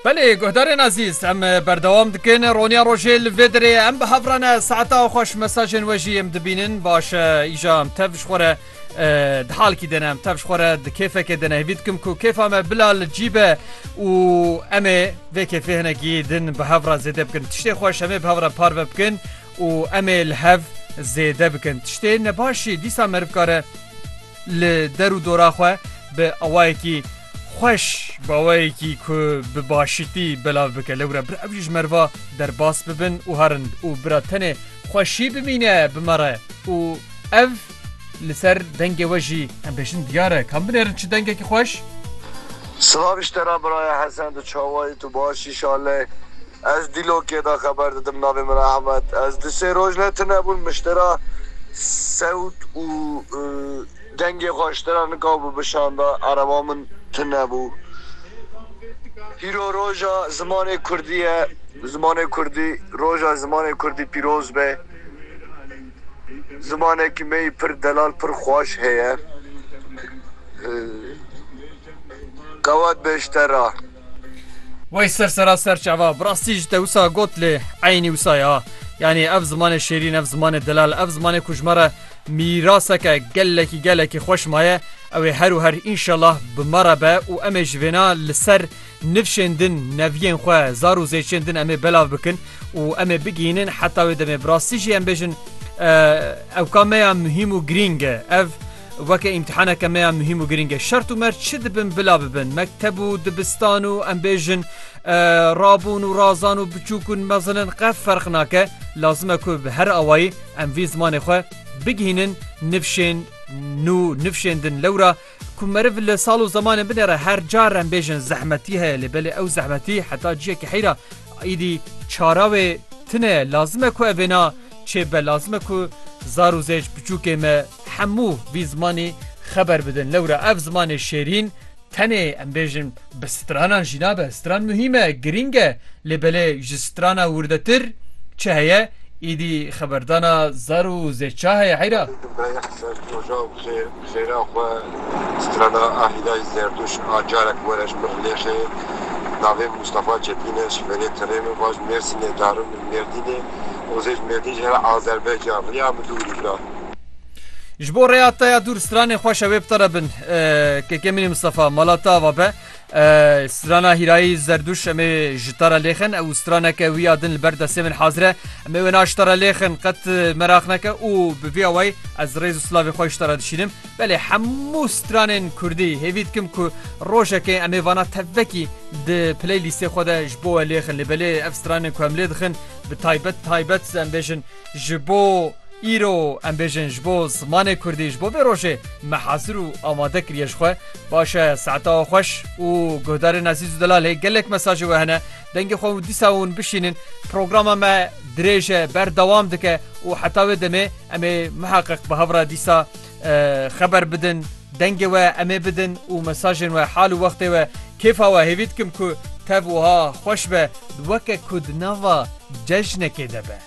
Belê guhdarên ezîz em berdewam dikin roniya rojê li vê derê em bi hev re ne saeta xweş mesajên we jî em dibînin baş e îja em tev ji xwe re di halkî dene em tev ji xwe re di kêfekê dene hêvî dikim ku kêfa me bila li cî be û em ê vê kêfê hinekî din bi hev re zêde bikin tiştê xweş em ê bi hev re parve bikin û em ê li hev zêde bikin tiştê nebaşî dîsa meriv kare Li der û dora xwe bi awayekî xweş bi awayekî ku bi başîtî belav bike. Lewre bir ev jî ji merva derbas bibin û herin û bira tenê xweşî bimîne bi me re û ev li ser dengê we jî em bêjin diyar e. Kam binêrin çi dengekî xweş. Silav ji te re biraya Hesen tu çawa yî tu baş î şalê. Ez dîlokê de xeber didim navê min Ehmed. Ez du sê roj ne tune bûn miştera sewt û dengê xwe ji te re nika bû bişanda ereba min tune bû. Pîro roja zimanê kurdî ye zimanê kurdî roja zimanê kurdî pîroz be zimanekî me yî pir delal pir xweş heye qewet be ji te re. Wey ser sera ser çava bi rastî ji te wisa got lê eynî wisa ya. Yanî ev zimanê şêrîn ev zimanê delal ev zimanê ku ji me re mîraseke gelekî gelekî xweş maye ew ê her û her înşellah bi me re be û em ê ji vêna li ser nifşên din neviyên xwe zar û zêçên din em ê belav bikin û em ê bigihînin heta wê demê bi rastî jî em bêjin ewka me ya muhîm û girîng e ev Weke îmtîhaneke me ya muhîm û girîng e. Şert û mert çi dibin bila bibin. Mekteb û dibistan û em bêjin rabûn û razan û biçûk û mezin in qet ferq nake. Lazim e ku bi her awayî em vî zimanê xwe bigihînin nifşên nû, nifşên din. Lewra ku meriv li sal û zemanên binê re her car em bêjin zehmetî heye lê belê ew zehmetî heta ciyekî heyra îdî çara wê tune ye. Lazim e ku ev êna çêbibe. Lazim e ku zar û zêc biçûkê me, Hemû vî zimanî xeber bidin. Lewra ev zimanê şêrîn tenê em bêjin bi stranan jî nabe. Stran muhîm e, girîng e lê belê ji strana wirdetir çi heye? Îdî xeberdana zar û zêça heye heyra. Meyîh Zerdûja û zêra xwe strana Ahîdayî Zerdûş a carek were ji Mirlêxê. Navê Mûstafa Çepîn e, ji Verê Tirêno, baş Mêrsînê, darim li Mêrdînê. Hozê ji Mêrdîn jî here Azerbaycan riya Midûrî bira. Ji bo rêya te ya dûr stranên xweş e wê bi te re bin Kekemînî Mistefa mala te ava be strana hîrayî zerdûş em ê ji te re lêxin ew straneke wî ya din li ber destê min hazir e em ê wê na ji te re lêxin qet meraq neke û bi vî awayî ez rêz û silavê xwe ji te re dişînim belê hemû stranên kurdî hêvî dikim ku rojekê em ê vana tevvekî di playlîstê xwe de ji bo we lêxin lê belê ev stranên ku em lê dixin bi taybet taybet em bêjin Ji bo îro em bêjin ji bo zimanê Kurdî ji bo vê rojê me hazir û amade kiriye ji xwe. Baş e saeta we xweş û guhdarên ezîz û delal hê gelek mesajê we hene dengê xwe û dîsa hûn bişînin. Programa me dirêj e berdewam dike û heta wê demê em ê miheqiq bi hev re dîsa Xeber bidin, dengê we em ê bidin û mesajên we, hal û wextê we. Kêfa we hêvî dikim ku tev wiha xweş be, weke ku di nava cejnekê de be.